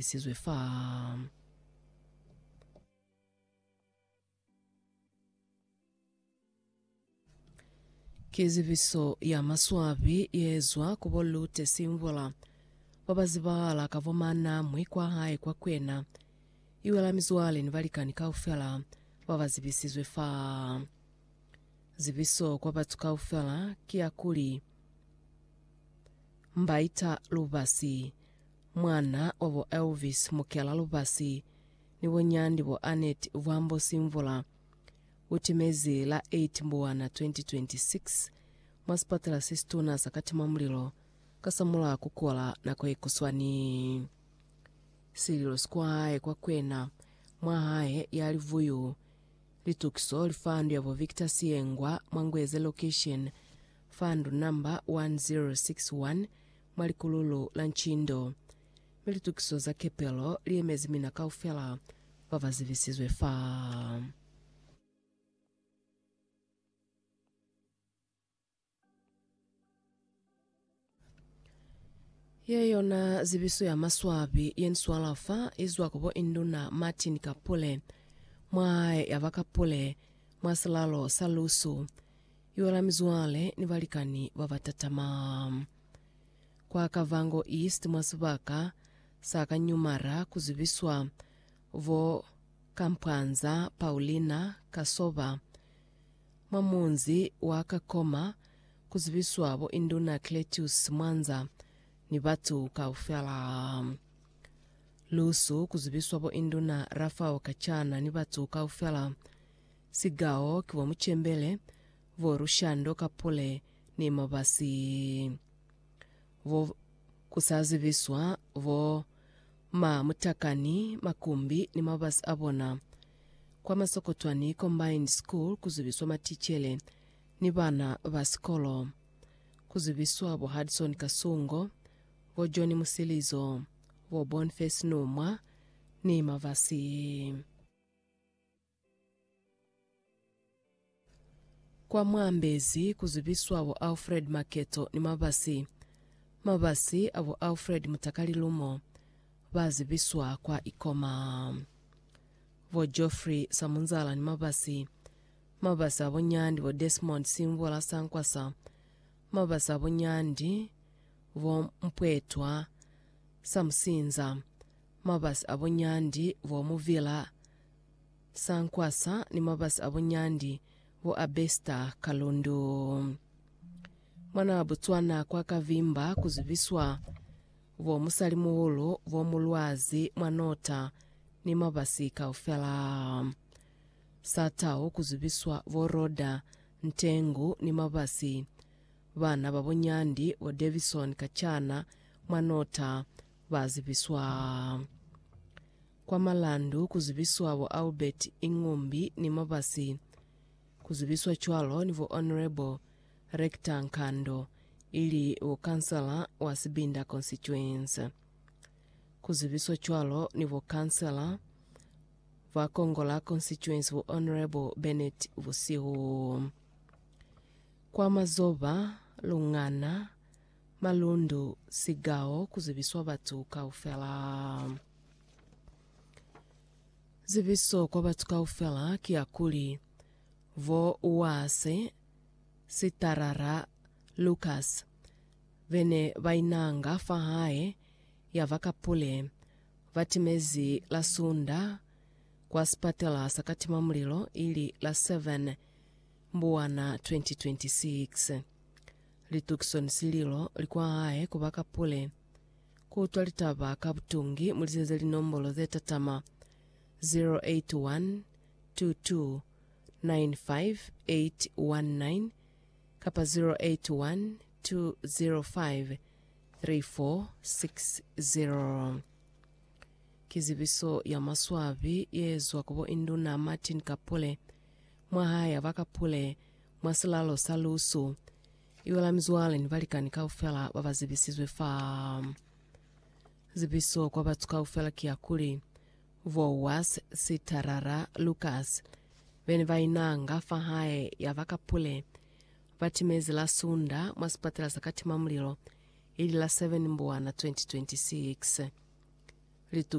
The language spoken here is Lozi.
lisizwe fa. Ki zibiso ya maswabi yeezwa ku bo Lute Simvula, ba ba zibahala ka bo Manamwi kwa hae kwa Kwena, iwela mizwale ni balikani kaufela ba ba zibisizwe fa. Zibiso kwa batu kaufela ki ya kuli, Mbaita lubasi. Mwana wa bo Elvis Mukela Lubasi ni bo Nyandi bo Annet Vwambo Simvula u timezi la 8 Mbuwana 2026 mwa sipatela se situna sa Katimamulilo kasamulaho ku kola nako ye kuswani. Sililo sikwae kwa kwena mwa hae ya Livuyu Litukiso Lifandu ya bo Victor Siyengwa mwa Ngweze Location, Fandu number 1061 mwa likululu la ncindo, mi litukiso za kepelo li emezi mina kaufela ba ba zibisizwe fa. Ye yona zibiso ya maswabi ye ni swala fa i zwa ku bo Induna Martin Kapule, mwa ya ba Kapule, mwa silalo sa lusu. Yola mizwale ni balikani ba ba tatama. Kwa Kavango East mwa sibaka sa ka Nyumara ku zibiswa bo Kampwanza Paulina Kasoba, mwa munzi wa Kakoma ku zibiswa bo Induna Cletius Mwanza ni batu kaufela. Lusu ku zibiswa bo Induna Rafao Kachana ni batu kaufela. Sigao ki bo mucembele, bo lushando ka pule ni mabasi, bo ku sa zibiswa, bo ma mutakani, makumbi ni mabasi a bona. Kwa Masokotwani Combined School ku zibiswa maticele ni bana ba sikolo. Ku zibiswa bo Hudson Kasungo, bo John Musilizo, bo Bonface Numwa ni mabasi. Kwa mwaambezi ku zibiswa bo Alfred Maketo ni Mabasi. Mabasi a bo Alfred Mutakali Lumo ba zibiswa kwa Ikoma. Bo Geoffrey Samunzala ni Mabasi. Mabasi a bo Nyandi bo Desmond Simvula Sankwasa. Mabasi a bo Nyandi bo Mpwetwa Samusinza. Mabasi a bo Nyandi bo Muvila Sankwasa ni mabasi a bo Nyandi, bo Abesta, Kalundu. Mwanaa Botswana kwa ka vimba ku zibiswa bo musalimuhulu bo mu lwazi mwa nota ni mabasi kaufela. Sa Tau ku zibiswa bo Roda, Ntengu ni mabasi. Bana ba bo Nyandi, bo Davison Kachana mwa nota, ba zibiswa. Kwa malandu ku zibiswa bo Albert Ingumbi ni Mabasi, ku zibiswa cwalo ni bo Honourable Rector Nkando, ili bo Kansala wa Sibinda Constituency. Ku zibiswa cwalo ni bo Kansala ba Kongola Constituency bo Honourable Bennett Busihu. Kwa mazoba, lungana, Malundu, Sikao, ku zibiswa batu kaufela. Zibiso kwa batu kaufela ki ya kuli, Vo Uase, Sitarara, Lukas, be ne ba inanga fa hae, ya ba ka pule, ba timezi la Sunda kwa sipatela sa katimamulilo ili la 7 Mbuwana 2026. Litukiso ni sililo li kwa hae ku ba ka pule. Ku utwa litaba ka butungi mu lizenze linombolo ze tatama, 0812295819 kapa 0812053460. Ki zibiso ya maswabi ye zwa ku bo Induna Martin Kapule. Mwa ha ya ba ka pule, mwa silalo sa lusu, iwa la mizwale ni balikani kaufela ba ba zibisizwe fa. Zibiso kwa batu kaufela ki ya kuli, Voas, Sitarara, Lukas, be ne ba inanga fa hae ya ba ka pule, ba timezi la Sunda mwa sipatela sa katimamulilo, ili la 7 Mbuwana 2026.